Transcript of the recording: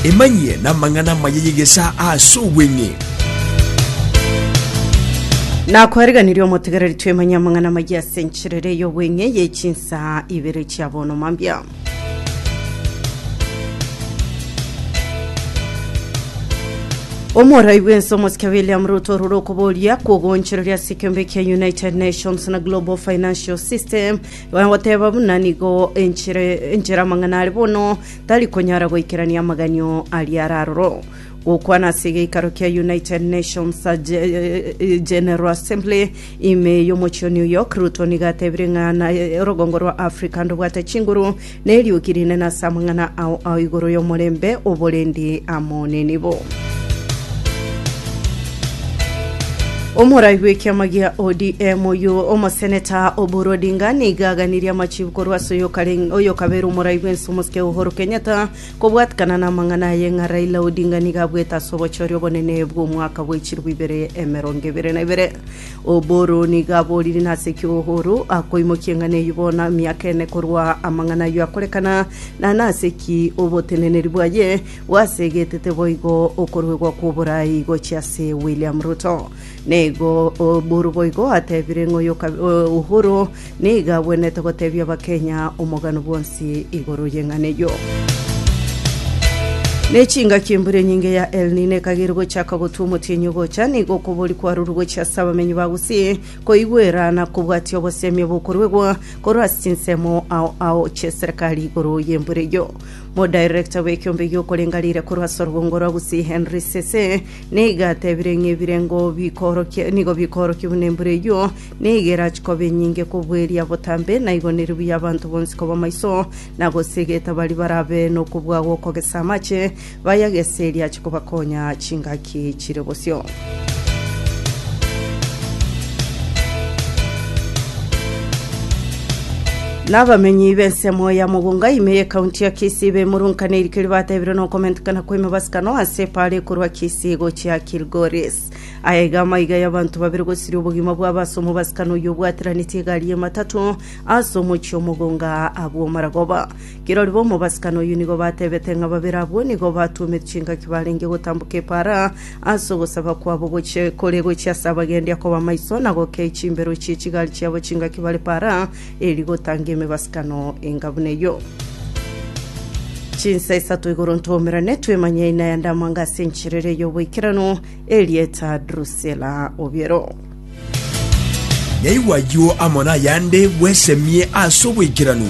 Emanyie namang'ana amaya y'egesaa ase obweng'e. Nakwariganirie omotegereri twemanye amang'ana amaya ase enchera ere y'obweng'e ye chinsaa ibere chia bono mambia. Omorai bw'ense omosike William Ruto orure okoboria kwogonchoreria ase ekeombe kia United Nations na Global Financial System Bagoteba buna nigo enchera enchera amang'ana are bono tari konyara goikerania amaganio aria araroro. Gokwana ase egeikaro kia United Nations Ge- General Assembly ime y'omochie o New York, Ruto nigo atebire ng'a na- rogongo rwa Africa ndobwate chinguru Nerioki rinene ase amang'ana ao ao igoro y'omorembe oborendi amo nenibo. Omorai bw'ekiama gia ODM oyio omoseneta Oburu Odinga nigo aganirie amachibu korwa ase oyokareng- oyokabera omorai bw'ense omosike Uhuru Kenyatta kobwatikana namang'ana aye ng'a Raila Odinga nigo abwete ase obochori obonene bw'omwaka bw'echilifu ibere emerongo ebere na ibere. Oboro nigo aborire nase ki Ohoro akoimokia eng'ana eyio bono emiaka ene korwa amang'ana ayio akorekana, na nase ki oboteneneri bwaye bwasegetete boigo okoruegwa kw'oboraai gochia ase William Ruto. Nigo Oboro boigo atebire ng'a oyo Ohoro Nigo agwenerete gotebia Abakenya omogano bwonsi igoro y'eng'ana eyio. Ne chingaki embura enyinge ya El Nino ekagera gochaka gotwa omotienyi ogocha, nigo okobori kwarorwe gochia ase abamenyi ba Gusii koigwera na kobwatia obosemi obokoruegwa korwa ase chinsemo ao ao chi'eserekari igoro y'embura eyio. Modirector bw'ekiombe gi'okorenga riire korwa ase orobongo rwa Gusii Henry Sese nigo atebire ng'a ebirengo bikoorokia nigo bikoorokia buna embura eyio Nigera chikoba enyinge kobua eria botambe, na igo neri buya abanto bonsi koba maiso, na gosiegeta baria barabe nokobua gw'okogesa amache, bayagese erio ache kobakonya chingaki chire bosio. Nabamenyi b'ensemo ya Mugunga ime y'ekaunti ya Kisii bemurunkaneirie keria bateebirwe nokomentekana kw'emebasano ase epaara ekorwa Kisii gochia Kilgoris. Aya iga amaiga y'abanto babere gosiria obogima bwabo ase omobasikano oyio obwateranetie egari y'ematato ase omochie omogonga agwo maragoba. Kirori b'omobasikano oyio nigo batebete ng'a babere abwo nigo batuomete chingaki barenge gotamboka epaara ase ogosaba kwabo gochie kore gochia ase abagendi akoba maiso na gokei chimbero chie chigari chiabo chingaki bare paara Eri gotangia emegwasikano enga buna eyio. Chinsa isato igoro ntwomerane twemanye aina ya ndamanga ase enchera eria y'oboikeranu, Erieta Drusilla Obiero. Yaigwa ayio amo nayande, bwesemie ase oboikeranu.